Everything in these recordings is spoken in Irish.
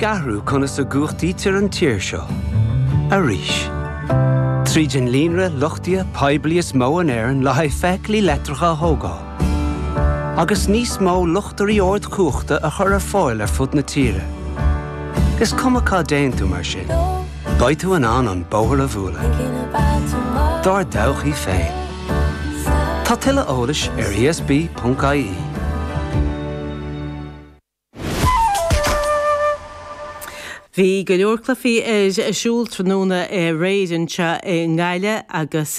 ag athrú conas a gcumhachtaítear an tír seo arís. Tríd an líonra luchtaithe poiblí is mó in Éirinn le haghaidh feithiclí leictreacha a thógáil, agus níos mó luchtairí ardchumhachta a chur ar fáil ar fud na tíre. Is cuma cá dtéann tú mar sin, beidh tú in ann an bóthar a bhualadh dár dtodhchaí féin. Tá tuilleadh eolais ar esb.ie. Bhí go leor cluichí ar siúl tráthnóna aréir anseo i nGaillimh agus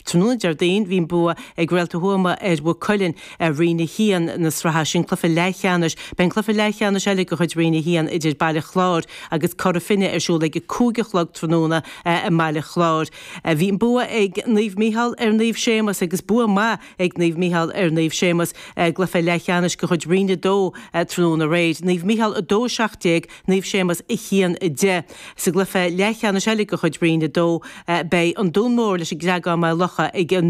tráthnóna Déardaoin bhí an bua ag Réalta Thuama ar Mhaigh Cuilinn i Roinn 1 na sraithe, sin cluiche leathcheannais. Beidh an cluiche leathcheannais eile de chuid Roinn 1 idir Baile Chláir agus Cora Finne ar siúl ag a cúig a chlog tráthnóna i mBaile Chláir. Bhí an bua ag Naomh Micheál ar Naomh Séamus agus bua maith ag Naomh Mícheál ar Naomh Séamas i gcluiche leathcheannais de chuid Roinn 2 tráthnóna aréir, Naomh Mícheál 2, 17, Naomh Séamas 1, 10. Sa gcluiche leathcheannais eile de chuid Roinn 2, beidh An Dún Mór leis an gCreagán-Maigh Locha ag a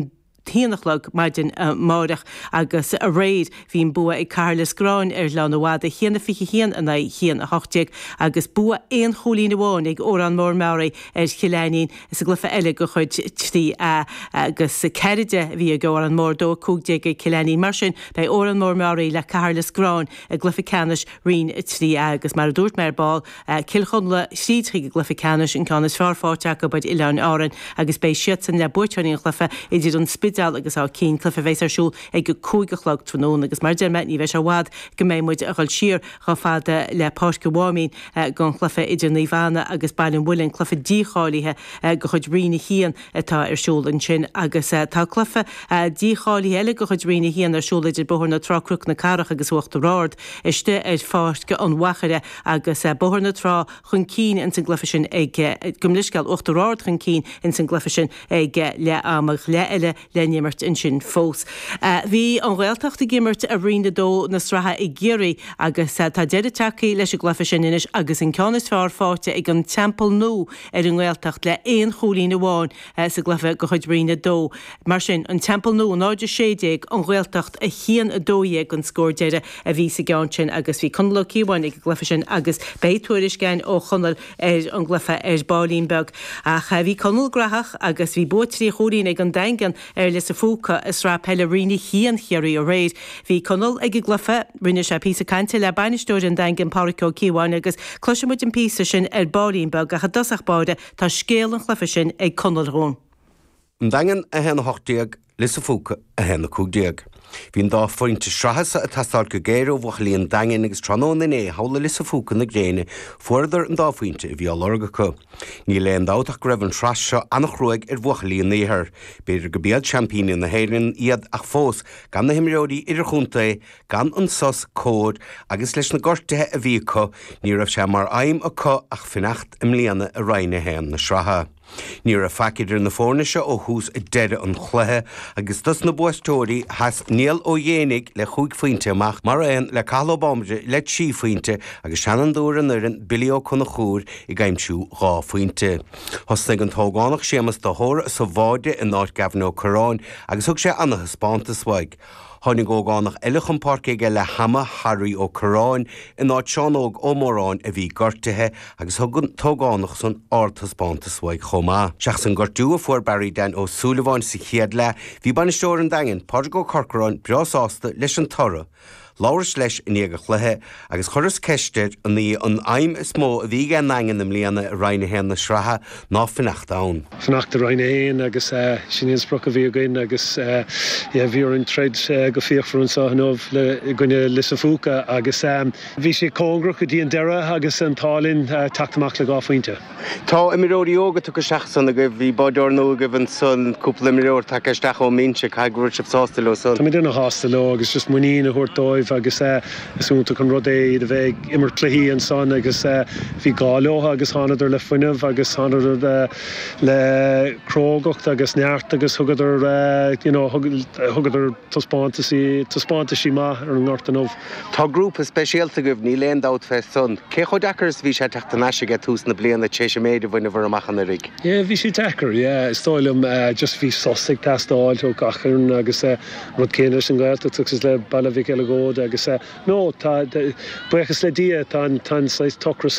1 a chlog maidin amárach agus aréir bhí an bua ag Cathair Loistreáin ar Ghleann na Madadh, 1 21 in aghaidh 1 18, agus bua aon chúilín amháin ag Órán Mór-Meáraí ar Chill Ainnín. Insa gcluiche eile de chuid 3A agus 4, 10 a bhí ag Órán Mór 2, 15 ag Cill Ainnín. Mar sin, beidh Órán Mór, Meáraí le Cathair Loistreáin i gcluiche ceannais Roinn 3A agus, mar a dúirt mé ar ball, Cill Chonla thríd chuig an gcluiche ceannais, an ceann is fearr faighte acu ar Oileáin Árainn agus beidh siadsan le buaiteoirí an chluiche idir An Spidéal agus Áth Cinn, cluiche a bheas ar siúl ag a 5 a chlog tráthnóna. Agus mar a deir mé, ní bheidh sé i bhfad go mbeidh muid ag dhul siar chomh fada le Páirc an Mháimín, don chluiche idir Naomh Anna agus Baile an Mhuilinn, cluiche dícháilithe de chuid Roinn 1 atá ar siúl ansin, agus tá cluiche dícháilithe eile de chuid Roinn 1 ar siúl idir Bóthar na Trá-Cnoc na Cathrach agus Uachtar Ard istigh ar Pháirc an Mhachaire agus Bóthar na Trá chun cinn insan gcluiche sin ag, gabh mo leithscéal, Uachtar Ard chun cinn insan gcluiche sin ag leath-am, ach leath eile le n-imirt ansin fós. Bhí an Ghaeltacht ag imirt i Roinn 2 na sraithe i gCiarraí agus tá deireadh tagthaí leis an gcluiche sin anois agus an ceann is fearr faighte ag an Teampall Nua ar an nGaeltacht le aon chúilín amháin sa gcluiche de chuid Roinn 2. Mar sin, an Teampall Nua 0-16, an Ghaeltacht 1-12 an scór deiridh a bhí sa gceann sin agus bhí Conall Ó Cíobháin ag an gcluiche sin agus beidh tuairisc againn ó Chonall ar an gcluiche ar baillín beag. Ach bhí Conall graitheach agus bhí bua trí chúilín ag An Daingean ar Lios an Phúca i Sraith Peile Roinn 1 Chiarraí aréir. Bhí Conall ag an gcluiche. Rinne sé píosa cainte le bainisteoir An Daingin, Páraic Ó Cíobháin agus cloisfidh muid an píosa sin ar baillín beag ach i dtosach báire tá scéal an chluiche sin ag Conall dhúinn. An Daingean 1 18 Lios a Phúca 1 15. Bhí an dá phointe sraithe seo ag teastáilt go géar ó bhuachaillí an Daingin agus tráthnóna inné thall i Lios a Phúca na gréine fuaireadar an dá phointe a bhí á lorg acu. Níl aon dabht ach go raibh an tsraith seo an-chruaidh ar bhuachaillí an Iarthar. B'fhéidir gurb iad seaimpíní na hÉireann iad ach fós gan na himreoirí idirchontae, gan an sos cóir agus leis na gortuithe a bhí acu ní raibh sé mar aidhm acu ach fanacht i mbliana i Roinn 1 na sraithe. Ní raibh faic idir na foirne seo ó thús deireadh an chluiche agus dos na buaiteoirí, sheas Niall Ó Géibheannaigh le chúig phointe amach, mar aon le Cathal Ó Bambaire le trí phointe agus seanfhondúir an fhoireann Billy Ó Conchúir ag aimsiú dhá phointe. Thosnaigh an t-ógánach Séamas de hÓra sa bháide in áit Gavin Ó Curráin agus thug sé ana-thaispeántas uaidh. Tháinig ógánach eile chun páirce aige leath-ama, Harry Ó Curráin, in áit Seán Óg Ó Móráin a bhí gortaithe, agus thug an t-ógánach san ardtaispeántas uaidh chomh maith. Seachas an gortú a fuair Barry Dan Ó Súilleabháin sa chéad leath, bhí bainisteoir an Daingin, Pádraig Ó Corcoráin, breá sásta leis an toradh. Labhras leis i ndiaidh an chluiche, agus chuireas ceist air an í an aidhm is mó a bhí aige an nDaingean i mbliana i Roinn 1 na sraithe ná fanacht ann. fanacht i Roinn 1 agus sin í an sprioc a bhí againn agus yeah bhí orainn troid go fíochmhar anseo inniu le i gcoinne Lios an Phúca agus bhí sé cóngarach go dtí an deireadh agus an t-ádh linn teacht amach le dhá phointe. Tá imreoirí óga tugtha isteach ansan agaibh, bhí báireoir nua agaibh ansan, cúpla imreoir tagtha isteach ón mbinse, caithfidh go bhfuil sibh sásta leo san? Tá muid ana-shásta leo agus just muinín a thabhairt dóibh agus is iontach an rud é iad a bheith ag imirt cluichí ansan agus bhí gá leo agus thánadar le fuinneamh agus thánadar le crógacht agus neart agus thugadar you know thugadar taispeántas, taispeántaisí maith ar an ngort inniu. Tá grúpa speisialta agaibh, níl aon dabht fé san. Cé chomh deacair is a bhí sé teacht thar n-ais aige tús na bliana tar éis an méid a bhaineabhair amach anuiridh? Yeah, bhí sé deacair, yeah. Is dóigh liom, just bhí sos ag teastáil ó gach fhoireann agus rud céanna leis an Ghaeltacht agus le Baile Mhic Eileagóid agus no, tá, buíochas le Dia, tá an saghas t-ocras san,